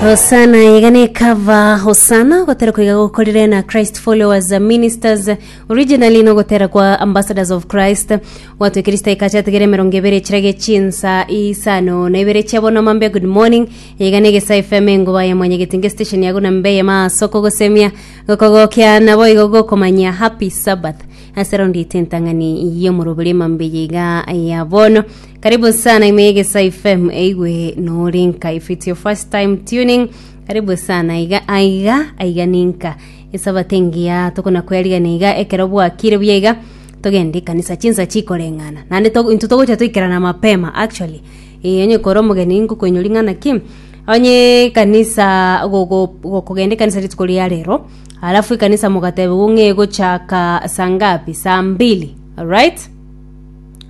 hosana iga nekava hosana gotera koiga gokorire na christ followers uh, ministers originally no gotera kwa ambassadors of christ watu ekirista ikachatigere emerongo ebere echirage chinsa isano na ibere chiabo na mambia good morning iga negesa fm engoba ya mwanya getinge station yago na mbe ya masoko gosemia gokogokia nabo igo gokomanya happy sabbath Ase round ite entang'ani y'omorobori emambe yaiga ya bono karibu sana ime egesa fm eigwe nori nka if it's your first time tuning karibu sana aiga aiga aiga ninka esabato engiya tokona kwerigana iga ekero bwakire buya iga togende ekanisa chinsa chikoreng'ana naende to- intwe togocha toikerana mapema actually Eh, onye kore omogeni ngokoinyori ng'ana ki onye ekanisa gogo- gokogenda ekanisa rituko ria rero Alafu ekanisa mogatebigwa ng'a egochaka saa ngapi? Saa mbili, alright?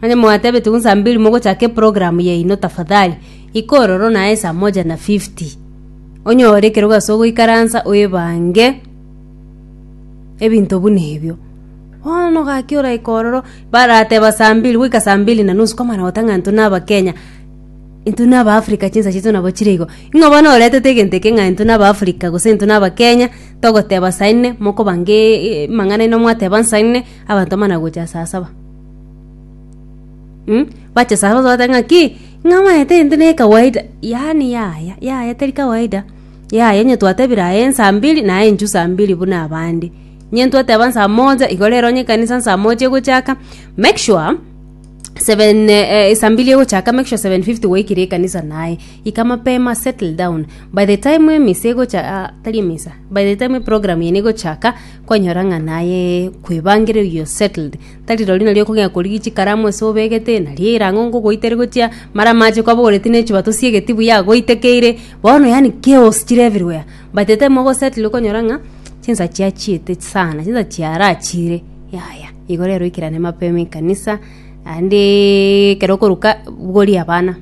Onye mwatebetigwa ng'a saa mbili mogochaka eprogramu yaino tafadhali, ika ororo naye saa moja na fifty, onyore ekerogo ase ogoikaransa oebange ebinto buna ebio. Bono ogaki oraika ororo, barateba saa mbili, goika saa mbili na nusu kwamanya goteba ng'a intwe na abakenya. intwe na abaafrika chinsa chiaito nabo chire igo ing'o bono oretete egento eke ng'a intwe na abaafrika gose intwe na abakenya togoteba saa inne mokobanga eeeee amang'ana aino mwateba nsa inne abanto bamana gocha saa saba mh bache saa saba tobateba ng'aki ng'a omanyete intwe ne kawaida yaani yaya yaya teri kawaida yaya onye twatebire aye nsa mbiri naye inchu saa mbiri buna abande onye ntwateba nsa moja igo rero onye ekanisa nsa moja egochaka make sure. 7 eh, eh, sambili egochaka make sure 750 waikire ekanisa naye ika mapema settle down by the time emisa egocha ah, tari emisa by the time program yene egochaka kwanyora ng'a naye kwebangire you settled tari rori nari okong'ea korigia chikaramu ase obegete nari erango ngogoitere gochia mara amache kwabogoreti na echuba tosiegeti buya agoitekeire bono yani chaos chire everywhere by the time ogosettle okonyora ng'a chinsa chiachiete sana chinsa chiarachire yaya Igo rero ikerane mapema ekanisa, naende ekero okoruka bogorie abana,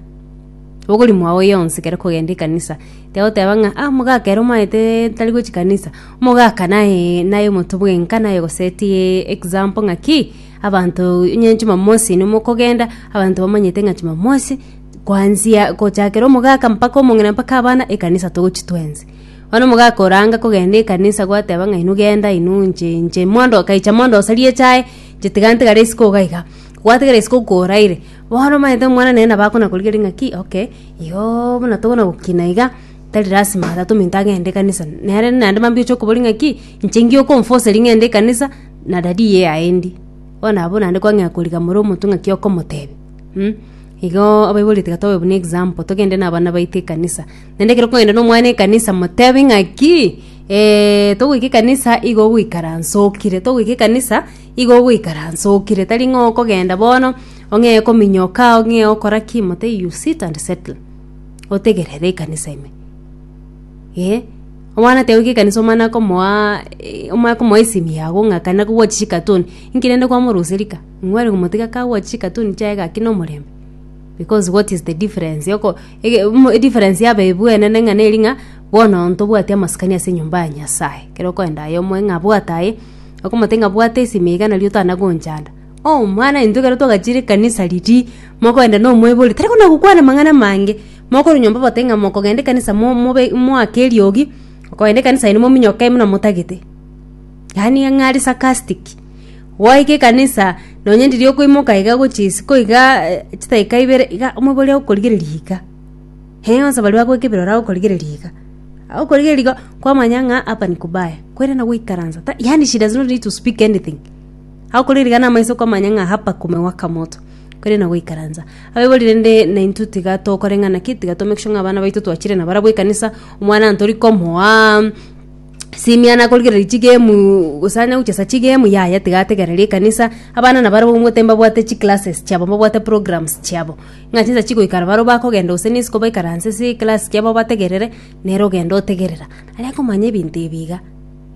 bogorie mwago yonsi ekero okogenda ekanisa. Tibagoteba ng'a ah omogaka ere omaete tari gochia kanisa, omogaka naye naye omonto bwenka naye ogosetie example ng'aki, abanto onye chimamosi ime mokogenda, abanto bamanyete ng'a chimamosi, kwanzia gochakera omogaka mpaka omong'ina mpaka abana, ekanisa togochia twensi. Bono mogakoranga kogenda ekanisa gwateba ng'a inwe genda inwe inche inche mondo okaicha mondo osarie echae, inche tiga ntigare isiko iga iga. Gwatigara isiko koraire, bono omanyete omwana nere nabo akona korigia ring'a ki okay, iyoo buna tokona gokina iga, tari lasima tata ominto agende ekanisa. Nere naende mambia oche okoboria ng'a ki, inche ngiye okomfoseria ng'ende ekanisa, na dadi iye aendi. Bono abwo naende kwang'ea korigia more omonto ng'aki okomotebia. Igoo abaibori tiga tobe buna example, togende na abana baito ekanisa. Naende ekero okogenda nomwana ekanisa motebi ng'aki togoika ekanisa igo ogoikaransa okire, togoika ekanisa igo ogoikaransa okire, tari ng'a okogenda bono ong'ee kominyoka ong'ee okora ki mote you sit and settle otegerere ekanisa ime eh. Omwana tiagoika ekanisa omana akomoaa omana akomoa esimi yaye ago ng'a kana kogwachire chikatuni, inki rende kwamorusia rika? Inwe are gomotiga kagwachire chikatuni chiaye gaki nomorembe. Because what is the difference yoko ege mm difference ya abaibwe enene ng'a neri ng'a bono onto obwate amasikani ase enyomba ya Nyasaye. Ekero okoenda aye omoe ng'a bwata aye, okomotebi ng'a bwata esimi iga nari otanagonchanda. Oh mwana intwe ekero twagachire ekanisa riria, mokoenda na omoibori tari kona gokwana amang'ana amange, mokorwa nyomba obatebie ng'a mokogenda ekanisa mo mobe moake eriogi, okogenda ekanisa ere mominyoke buna motagete. Yaani ng'a are sarcastic. Gwaika ekanisa, nonye ndiri okoimoka iga gochia isiko iga eh, chidakika ibere iga omoibe oria agokorigereria iga. Hee onsi baria bagoika ebirori agokorigereria iga. Agokorigereria iga, kwamanya ng'a hapa ni kubaya. Kwerana goikaransa. Ta- Yaani she does not need to speak anything. Agokorigereria iga namaiso kwamanya ng'a hapa kumewaka moto. Kwerana goikaransa. Abaibori rende naintwe tiga tokore ng'a naki, tiga to make sure ng'a abana baito twachire nabarabwo ekanisa, omwana ntori komoa, Simia nakorigereria chigame gose anya gochesa chigame yaya tiga ategerere ekanisa abana nabarabwo omwete mbabwate chiclasses chiabo mbabwate programs chiabo ng'a chinsa chigoikara barabwo bakogenda gose na isiko baikaranse ase eclass chiabo bategerere nere ogende otegerera aria komanya ebinto ebi iga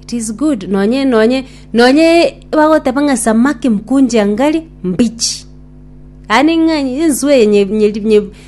it is good nonye nonye nonye bagoteba ng'a samaki mkunje angali mbichi yaani ng'a enswe yenye nye.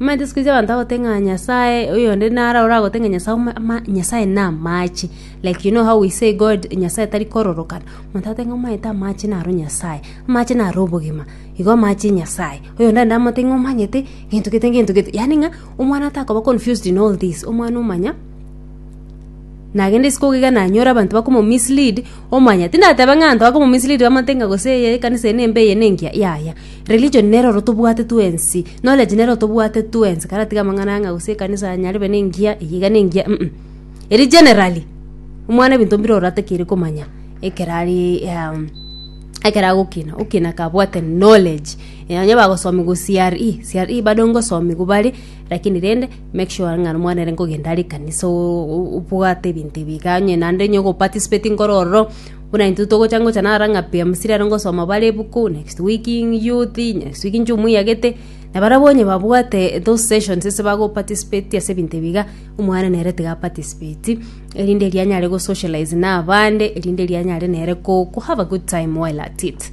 Omanyete isiko echi abanto bagotebi ng'a Nyasaye oyo onde naro oragotebi ng'a Nyasaye ome- ama- Nyasaye na amache. Like you know how we say God Nyasaye tari kororokana. Omonto agotebi ng'a omanyete amache naro Nyasaye, amache naro obogima, igo amache Nyasaye. Oyo onde naende amotebi ng'a omanyete gento gete gento gete. Yaani ng'a omwana atakoba confused in all this, omwana omanya nagende isiko iga nanyore abanto bakomo mislead, omanya. Tindateba ng'a abanto bakomo mislead bamotebi ng'a gose eye ekanisa eye nembe eye nengiya, yaya. Religion nero oro tobwate twensi. Knowledge nero oro tobwate twensi. Karatiga amang'ana ang'a gose ekanisa nyarebe nengiya, eye iga nengiya mm. Eri generally, omwana ebinto mbire oro atakeire komanya ekero ari um, ekero agokina. Okina kabwate knowledge. Eh, Onye bagosomia go CRE, CRE bado ngosomigwa bare, lakini rende make sure ng'a omwana ere nkogenda are ekanisa o- o- obwate ebinto ebi iga, onye naende onye ogoparticipate nkoro ororo, Buna intwe togocha ngocha nara ng'a pi amisiri are ngosoma bare ebuku, next week youth, next week inche omoiyagete, na barabwo onye babwate those sessions ase bagoparticipate ase ebinto ebi iga, omwana nere tiga aparticipate, erinde rianyare gosocialize na abande, erinde rianyare nere ko ko have a good time while at it.